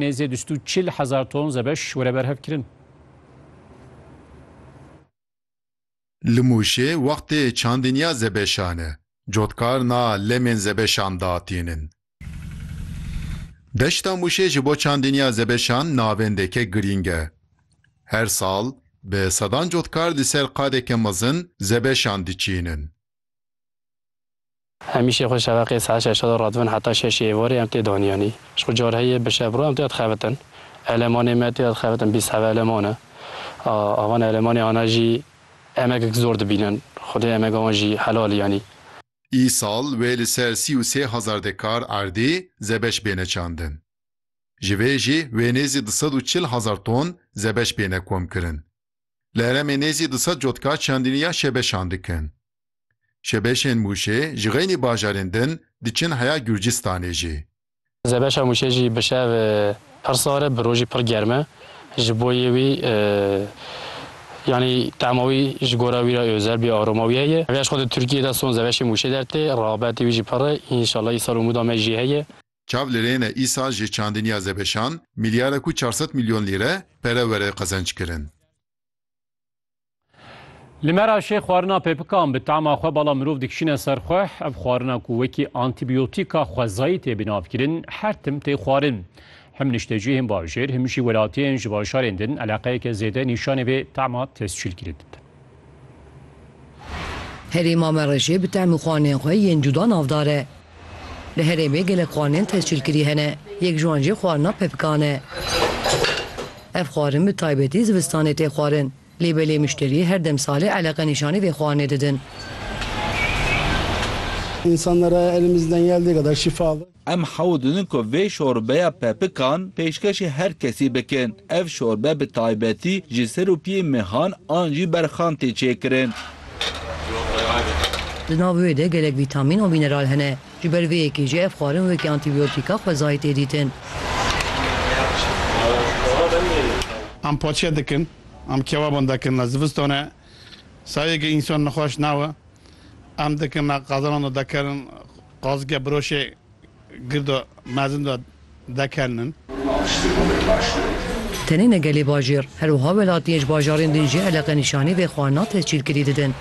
Nêzî du sed û çil hezar ton zebeş were berhevkirin. Li Mûşê wextê çandên ya zebeşan e, cotkarina lemên zebeşan datînin. Deşta Mûşê ji bo çandên ya zebeşan navendeke girîng e. Her sal bi sedan cotkar li ser qadeke mezin zebeşan diçînin. Hemîşe xwe şeveqê saet şeşa de radibin heta şeşê êvarê em tê daniyanî. Ji xwe carî heye bi şev re em tê de dixebitin. Elemanê me tê de dixebitin bîst heve eleman e. Ava ne elemanê ana jî emegek zor dibînin. Xwedê emega wan jî helal yanî. Îsal wê li ser sî û sê hezar dekar erdê zebeş bêne çandin. Ji vê jî wê nêzî du sed û çil hezar ton zebeş bêne komkirin. Li herêmê nêzî du sed cotka çandinî ya şebeşan dikin. Şebeşên Mûşê ji xeynî bajarên din diçin heya Gurcistanê jî. Zebeşa Mûşê jî bi şev pir sar e, bi rojî pir germ e. Ji bo yê wî yanî tema wî ji gora wî re ozel bî, aroma wî heye. Heger ji xwe di Tirkiyê de son zebeşê Mûşê dertê, rexabetê wî jî pir e. Înşallah îsal umûda me jî heye. Çav li rê ne îsal ji çandiniya Zebeşan mîlyarek û çar sed mîlyon lîre pere were qezenckirin. Li Meraşê xwarina pêpikan bi tama xwe bala mirov dikişîne ser xwe. Ev xwarina ku wekî antîbiyotîka xwezayî tê binavkirin her tim tê xwarin. Him niştecihên bajêr him jî welatiyên ji bajarên din eleqeyeke zêde nîşanê vê tama tescîlkirî didin. Herêma me re jê bi tehm û xwanên xwe yên cuda navdar e. Li herêmê gelek xwanên tescîlkirî hene. Yek ji wan jî xwarina pepikan e. Ev xwarin bi taybetî zivistanê tê xwarin. Lê belê mişterî her dem salê eleqe nîşanî vê xwarinê didin. Em hewl didin ku vê şorbeya pepikan pêşkêşî her kesî bikin. Ev şorbe bi taybetî ji serûpiyê mehan an jî berxan tê çêkirin. Di nav wê de gelek vîtamîn û mîneral hene. Ji ber vê yekê jî ev xwarin wekî antîbiyotîka xwezayî tê dîtin. Em paçe dikin, em kewaban dikin li zivistane. Sayeke însan nexweş nawe. Em dikin me qezilan de dekerin. Qazike biroşê girdo mezin do dekelnin. Tenê ne gelê bajêr, her wiha welatiyên ji bajarên din jî eleqe nîşanî vê xwarina tescîlkirî didin.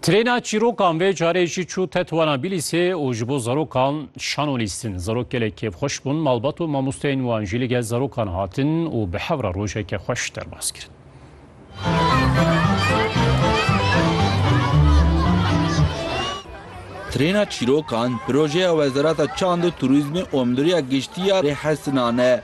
Trêna çîrokan vê carê jî çû Tetwana Bîlîsê û ji bo zarokan Şano lîstin, zarok gelek kêfxweş bûn, malbat û mamosteyên wan jî li gel zarokan hatin û bi hev re rojeke xweş derbas kirin. Trêna çîrokan projeya Wezareta Çand û Turîzmê û Mdûriya Giştî ya Rêhesinan e.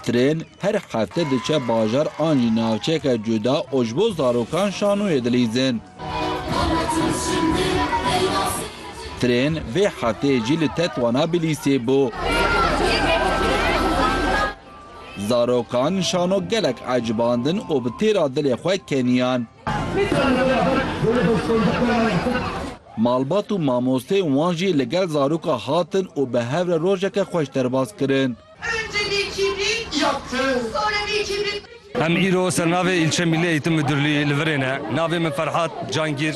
Trên her hefte diçe bajar an jî navçeyeke cuda û ji bo zarokan şanoyê dilîzin. Trên vê hefteyê jî li Tetwana Bilîsê bû. Zarokan şano gelek ecibandin û bi têra dilê xwe keniyan. Malbat û mamosteyên wan jî li gel zaroka hatin û bi hev re rojeke xweş derbas kirin. Em îro ser navê Îlçe Mîllî Eîtim Midurlî li virê ne. Navê min Ferhat Cangîr.